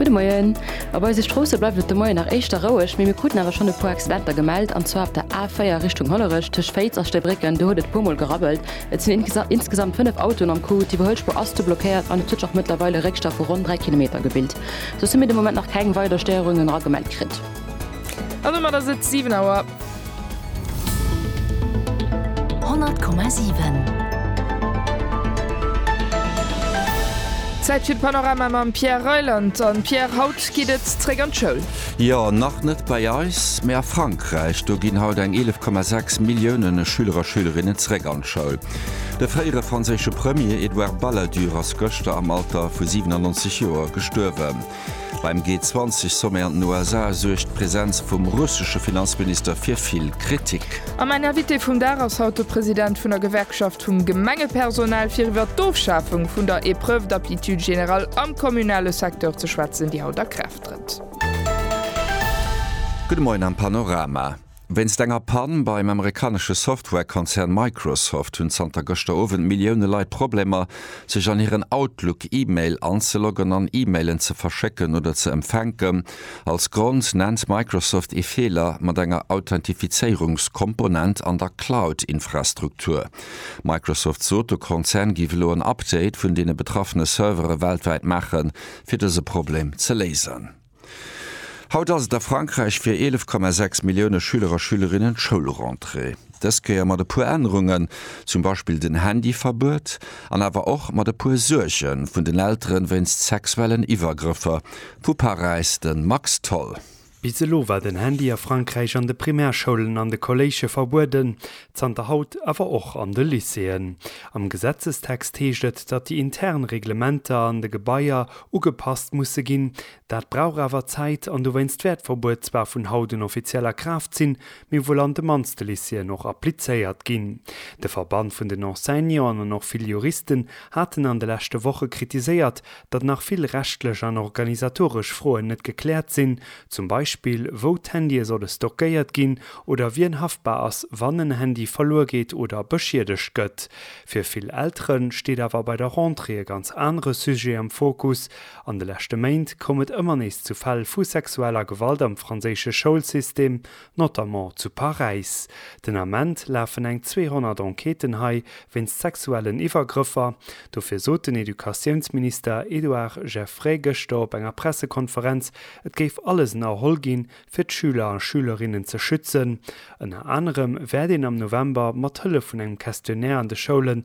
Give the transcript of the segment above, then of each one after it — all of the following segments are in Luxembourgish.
Gudde Moien. Op eise Stroosse bleift et de Moien nach éischter roueg, mee mir kruten awer schonn e puer Accidenter gemellt, an zwar op der A4 Richtung Hollerech tëscht Féiz a Stébrécken, do huet et e puermol gerabbelt. Et sinn insgesamt 5 Autoen am Coup, d'Iwwerhuelspuer ass du blockéiert an et huet sech och mëttlerweil e Réckstau vu ronn 3 Kilometer gebilt, soss hu mir de Moment nach keng weider Stéierungen era gemellt kritt. An domat ass et 7 Auer. 100,7. Zäit fir d'Panorama mam Pierre Reyland. An Pierre, haut geet et zréck an d'Schoul. Jo, nach net bei eis, mee a Frankräich. Do ginn haut eng 11,6 Milliounen Schüler a Schülerinnen zréck an d'Schoul. De fréiere franséische Premier Edouard Balladur ass gëschter am Alter vu 97 Joer gestuerwen. Beim G20-Sommet an den USA suergt d'Presenz vum russesche Finanzminister fir vill Kritik. A mäin Invité vum Dag ass haut de President vun der Gewerkschaft vum Gemengepersonal, fir iwwer d'Ofschafung vun der Épreuve d'aptitude générale am kommunale Secteur ze schwätzen, déi haut a Kraaft trëtt. Gudde Moien am Panorama. Wéinst enger Pann beim amerikanesche Software-Konzern Microsoft hunn zanter gëschter Owend Millioune Leit Problemer, sech an hiren Outlook E-Mail anzeloggen an E-Mailen ze verschécken oder ze empfänken. Als Grond nennt Microsoft ee Feeler mat enger Authentifizéierungskomponent an der Cloud-Infrastruktur. Microsoft sot, de Konzern géif elo en Update vun deene betraffene Servere weltwäit maachen, fir dëse Problem ze léisen. Haut ass et a Frankräich fir 11,6 Millioune Schüler a Schülerinnen d'Schoulrentrée. Dës Kéier mat e puer Ännerungen, zum Beispill den Handyverbuet, an awer och mat e puer Suerge vun den Eltere wéinst sexuellen Iwwergrëffer. Vu Paräis de Max Tholl. Bis elo war den Handy a Frankräich an de Primärschoulen an de Kolléige verbueden. Zanter haut awer och an de Lycéeën. Am Gesetzestext heescht et, datt déi intern Reglementer an de Gebaier ugepasst musse ginn. Dat brauch awer Zäit an dowéinst wäert d'Verbuet zwar vun haut un offiziell a Kraaft sinn, mee wuel an de mannste Lycéeën och applizéiert ginn. De Verband vun den Enseignanten an och vill Juristen haten an de leschte Woche kritiséiert, datt nach vill rechtlech an organisatoresch Froen net gekläert sinn, zum Beispill wou d'Handye solle stockéiert ginn oder wien haftbar ass, wann en Handy verluer geet oder beschiedegt gëtt. Fir vill Eltere steet awer bei der Rentrée e ganz anere Sujet am Fokus, An de leschte Méint koum et ëmmer nees zu Fäll vu sexueller Gewalt am franséische Schoulsystem, notamment zu Paräis. Den Ament lafen eng 200 Enquêten hei wéinst sexuellen Iwwergrëffer. Dofir sot den Educatiounsminister Édouard Geffray gëschter op enger Pressekonferenz, et géif alles ënnerholl ginn, fir d'Schüler a Schülerinnen ze schützen. Ënner anerem wäert een am November mat Hëllef vun engem Questionnaire an de Schoulen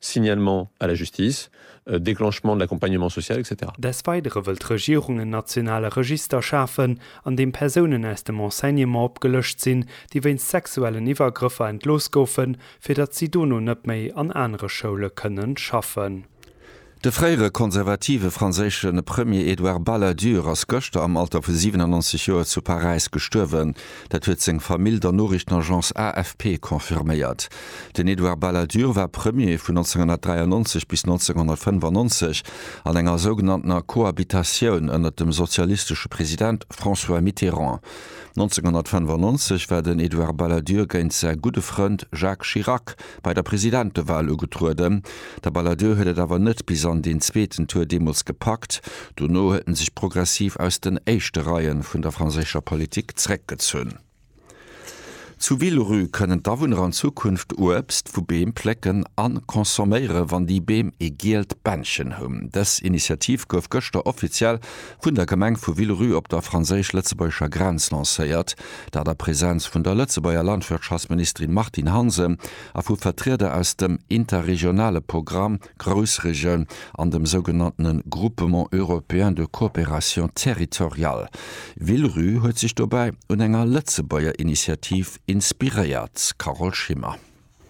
Signalement à la justice, déclenchement de l'accompagnement social, etc. Des Weidere wëll d'Regierung en nationale Register schafen, an deem Persounen aus dem Enseignement opgelëscht sinn, déi wéinst sexuellen Iwwergrëffer entlooss goufen, fir datt si dono net méi an anere Schoule kënnen schaffen. De fréiere konservative franséische Premier Edouard Balladur ass gëschter am Alter vu 97 Joer zu Paräis gestuerwen. Dat huet seng Famill der Noriichtenagence AFP confirméiert. Den Edouard Balladur war Premier vun 1993 bis 1995 an enger sougenanntener Cohabitatioun ënner dem sozialistesche President François Mitterrand. 1995 war den Edouard Balladur géint säi gudde Frënd Jacques Chirac bei der Presidentewal ugetrueden. De Balladur huet et awer net bis an deen zweeten Tour deemools gepackt. Dono huet en sech progressiv aus den éischte Reie vun der franséischer Politik zréckgezunn. Zu Villerupt kënnen d'Awunner an Zukunft Uebst vu Beem plécken a consomméieren, wann déi Beem ee gielt Bändchen hunn. Dës Initiativ gouf gëschter offiziell vun der Gemeng vu Villerupt op der franséisch-lëtzebuergescher Grenz lancéiert. Dat a Präsenz vun der Lëtzebuerger Landwirtschaftsministerin Martine Hansen a vu Vertrieder aus dem interregionale Programm Groussregioun an dem sougenanntene Groupement européen de coopération territoriale. Villeru huet sech dobäi un enger Lëtzebuerger Initiativ inspiréiert, Carole Schimmer.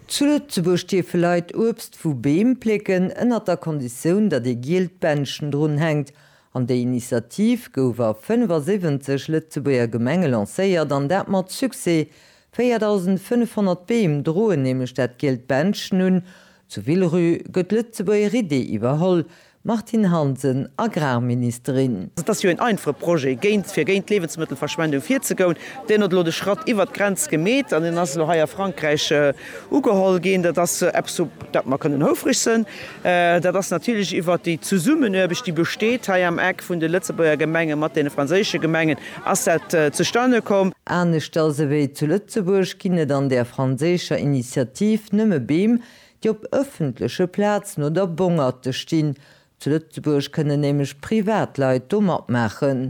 Zu Lëtzebuerg dierfe Leit Uebst vu Beem plécken, ënnert der Konditioun, datt ee gielt Bändchen drun hänkt. An déi Initiativ gouf a 75 Lëtzebuerger Gemenge lancéiert, an dat mat Succès. 4.500 Beem droen nämlech dat gielt Bändchen un. Zu Villerupt gëtt d'Lëtzebuerger Idee iwwerholl, Martine Hansen, Agrarministerin. Et ass jo een einfache Projet, géint, fir géint d'Liewensmëttelverschwendung virzegoun. Deen huet elo de Schratt iwwert d'Grenz gemeet an deen ass elo hei a Frankräich. Ugeholl ginn. Dat ass eppes, op dat mer kënnen houfreg sinn. Dat ass natierlech iwwert déi Zesummenuarbecht, déi besteet hei am Eck vun de Lëtzebuerger Gemenge mat deene franséische Gemengen, ass dat zustane komm. Aneschters ewéi zu Lëtzebuerg ginn et an där franséischer Initiativ nëmme Beem, déi op ëffentleche Plazen oder Bongerte stinn. Zu Lëtzebuerg kënnen nämlech Privatleit do matmaachen.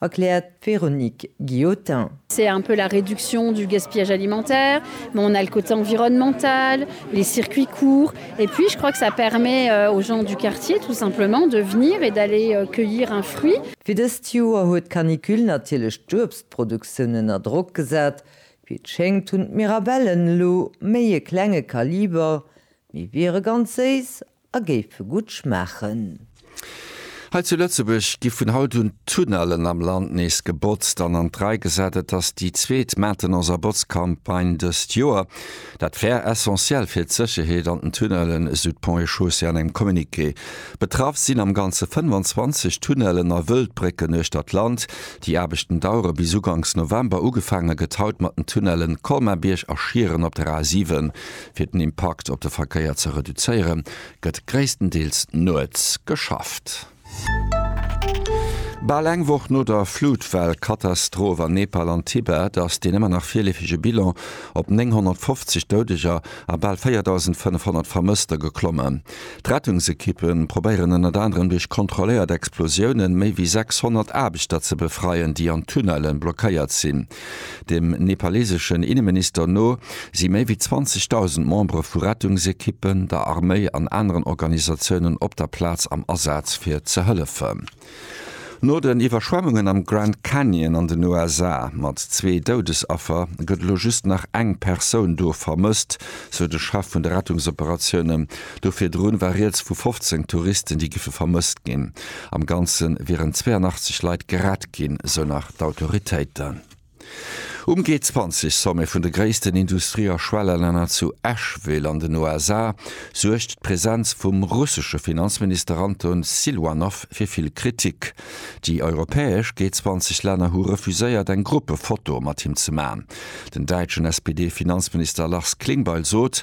erkläert d'Véronique Guillotin. C'est un peu la réduction du gaspillage alimentaire, mais on a le côté environnemental, les circuits courts et puis je crois que ça permet aux gens du quartier tout simplement de venir et d'aller cueillir un fruit. Fir dëst Joer huet d'Canicule natierlech d'Uebstproduktioun ënner Drock gesat. Wéi et schéngt hunn d'Mirabellen elo méi e klenge Kaliber, mee wiere ganz séiss A géife gutt schmaachen. Hei zu Lëtzebuerg gi vun haut un d'Tunnellen am Land nees gebotzt an an d'Rei gesat. Et ass déi zweet Maintenance a Botzcampagne dëst Joer. Dat wär essentiell fir d'Sécherheet an den Tunnellen, esou d'Ponts et Chaussées an engem Communiqué. Betraff sinn am Ganze 25 Tunnellen a Wëldbrécken uechter d'Land. Déi Aarbechten dauere bis ugangs November. Ugefaange gëtt haut mat den Tunnellen Colmar-Bierg a Schieren op der A7. Fir den Impakt op de Verkéier ze reduzéiere gëtt gréisstendeels nuets geschafft. Bal eng Woch no der Flutwell-Katastroph an Nepal an Tibet ass deen ëmmer nach virleefege Bilan op 950 Doudeger a bal 4.500 Vermësster geklommen. D'Rettungsekippe probéieren ënnert anerem duerch kontrolléiert Explosiounen méi wéi 600 Aarbechter ze befreien, déi an Tunnelle blockéiert sinn. Dem nepaleseschen Inneminister no si méi wéi 20.000 Membere vu Rettungsekippen, der Arméi an aneren Organisatiounen op der Plaz am Asaz fir ze hëllefen. No den Iwwerschwemmungen am Grand Canyon an den USA mat zwee Doudesaffer gëtt elo just nach eng Persoun do vermësst, sou de Chef vun de Rettungsoperatiounen Do virdrun war Rieds vu 15 Touristen, déi giffe vermësst ginn. Am Ganze wieren 82 Leit gerett ginn, sou nach d'Autoritéiten. Um G20-Sommet vun de gréissten Industrie a Schwellelänner zu Asheville an den USA suergt d'Presenz vum russesche Finanzminister Anton Siluanow fir vill Kritik. Déi europäesch G20-Länner hu refuséiert, eng Gruppefoto mat him ze man. Den däitschen SPD-Finanzminister Lars Klingbeil sot,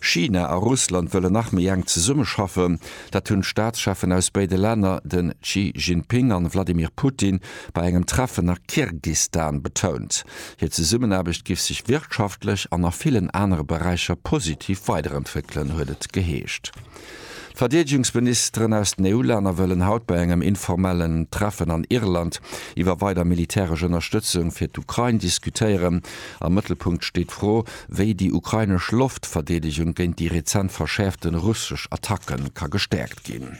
China a Russland wëllen nach méi enk zesummeschaffen. Dat hunn d'Staatscheffen aus béide Länner, de Xi Jinping a Wladimir Putin, bei engem Treffen a Kirgistan betount. Hir Zesummenaarbecht giff sech wirtschaftlech an a villen anere Beräicher positiv weiderentwéckelen, huet et geheescht. D'Verdeedegungsministeren aus den EU-Länner wëllen haut bei engem informellen Treffen an Irland iwwer weider militäresch Ënnerstëtzung fir d'Ukrain diskutéieren. Am Mëttelpunkt steet d'Fro, wéi déi ukrainesch Loftverdeedegung géint déi rezent verschäerfte russesch Attacke ka gestäerkt ginn.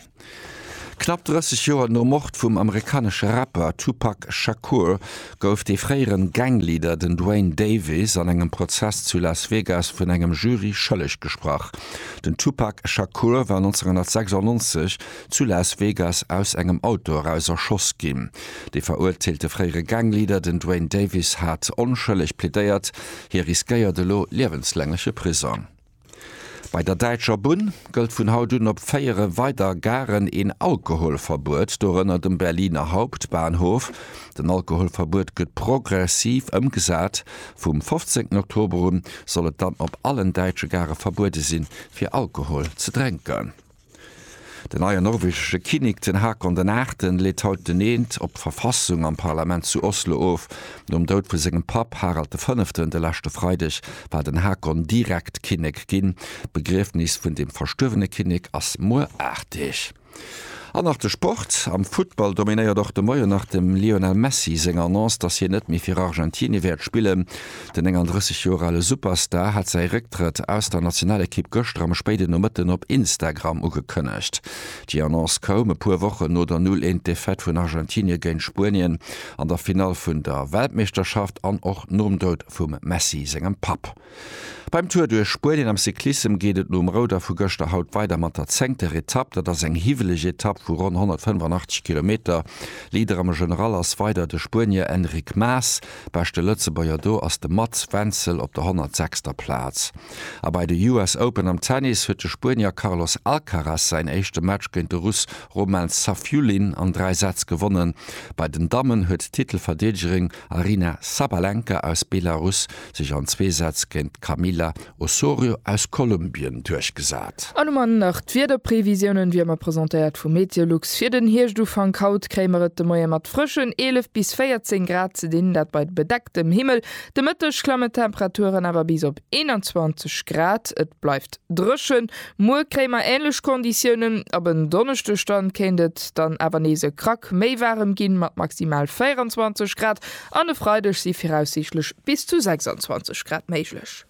Knapp 30 Joer nom Mord vum amerikanesche Rapper Tupac Shakur gouf de fréieren Gangleader, den Duane Davis, an engem Prozess zu Las Vegas vun engem Jury schëlleg gesprach. Den Tupac Shakur war 1996 zu Las Vegas aus engem Auto eraus erschoss ginn. De verurteelte fréiere Gangleader, den Duane Davis, hat onschëlleg plädéiert. Hie riskéiert elo liewenslängleche Prisong. Bei der Däitscher Bunn gëllt vun haut un op véiere weider Garen een Alkoholverbuet, dorënner dem Berliner Hauptbahnhof. Den Alkoholverbuet gëtt progressiv ëmgesat. Vum 15 Oktober un soll et dann op allen däitsche Gare verbuede sinn, fir Alkohol ze drénken. Den neien norwegesche Kinnek, den Haakon den Aachten, leet haut den Eent op d'Verfassung am Parlament zu Oslo of. Nom Doud vu sengem Papp Harald de Fënneften de leschte Freideg war den Haakon direkt Kinnek ginn. D'Begriefnis vun dem verstuerwene Kinnek ass muer 8 Deeg. An nach de Sport, Am Futtball dominéiert och de Moien nach dem Lionel Messi seng Annonce, datt hien net méi fir Argentinie wäert spillen. Den 39 Joer ale Superstar hat säi Récktrëtt aus der Nationalekipp gëschter am spéiden Nomëtten op Instagram ugekënnegt. Déi Annonce koum e puer Wochen no der Null eent Defaite vun Argentinië géint Spuenien an der Finall vun der Weltmeeschterschaft an och nom Doud vum Messi sengem Papp. Beim Tour duerch Spuenien am Cyclissem geet et nom Rouder vu gëschter haut weider mat der zéngter Etapp. Dat ass eng hiwweleg Etapp vu ronn 185 Kilometer. Leader am General ass weider de Spuenier Enric Mas. Beschte Lëtzebuerger do ass de Mats Wenzel op der 106. Plaz. A bei de US Open am Tennis huet de Spuenier Carlos Alcaraz säin éischte Match géint de Russ Roman Safiullin an 3 Sätz gewonnen. Bei den Dammen huet d'Titelverdeedegerin Aryna Sabalenka aus Belarus sech an zwee Sätz géint d'Kamila Osorio aus Kolumbien duerchgesat. An um Enn nach d'Wiederprevisiounen, wéi ëmmer presentéiert vu Meteolux. Fir den Hierschufank haut kréie mer et de Moie mat frëschen 11 bis 14 Grad ze dinn, dat bei bedecktem Himmel. De Mëtteg klammen d'Temperaturen awer bis op 21 Grad. Et bleift dréchen. Muer kréie mer änlech Konditiounen. Ab en Donneschdeg dann kéint et dann awer nees e Krack méi waarem ginn, mat maximal 24 Grad. An e Freideg si viraussiichtlech bis zu 26 Grad méiglech.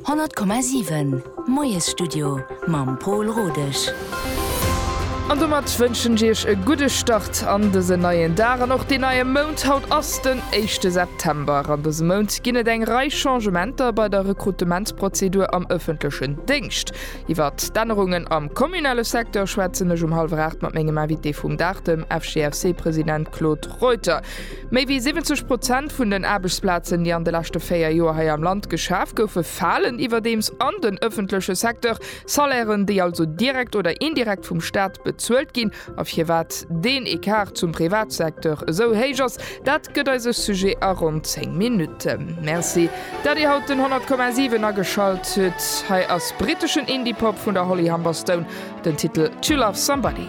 100,7 Moiesstudio mam Pol Rodesch. An domat wënschen ech Iech e gudde Start an dësen neien Dag an och deen neie Mount. Haut ass den éischte September. An dësem Mount ginn et eng Rei Changementer bei der Rekrutementsprozedur am ëffentlechen Déngscht. Iwwer d'Ännerungen am kommunale Secteur schwätzen ech um hallwer 8 mat mengem Invité vum Dag, dem FGFC-President Claude Reuter. Méi wéi 70 Prozent vun den Aarbechtsplazen, déi an de leschte véier Joer hei am Land geschaf goufe, falen iwwerdeems an den ëffentleche Secteur. Salairen, déi also direkt oder indirekt vum Staat bezuelt ginn. A firwat deen Ecart zum Privatsecteur esou héich ass, dat gëtt eise Sujet a ronn 10 Minutten. Merci, dat Dir haut den 100,7 ageschalt hutt. Hei ass briteschen Indie-Pop vun der Holly Humberstone, den Titel To Love Somebody.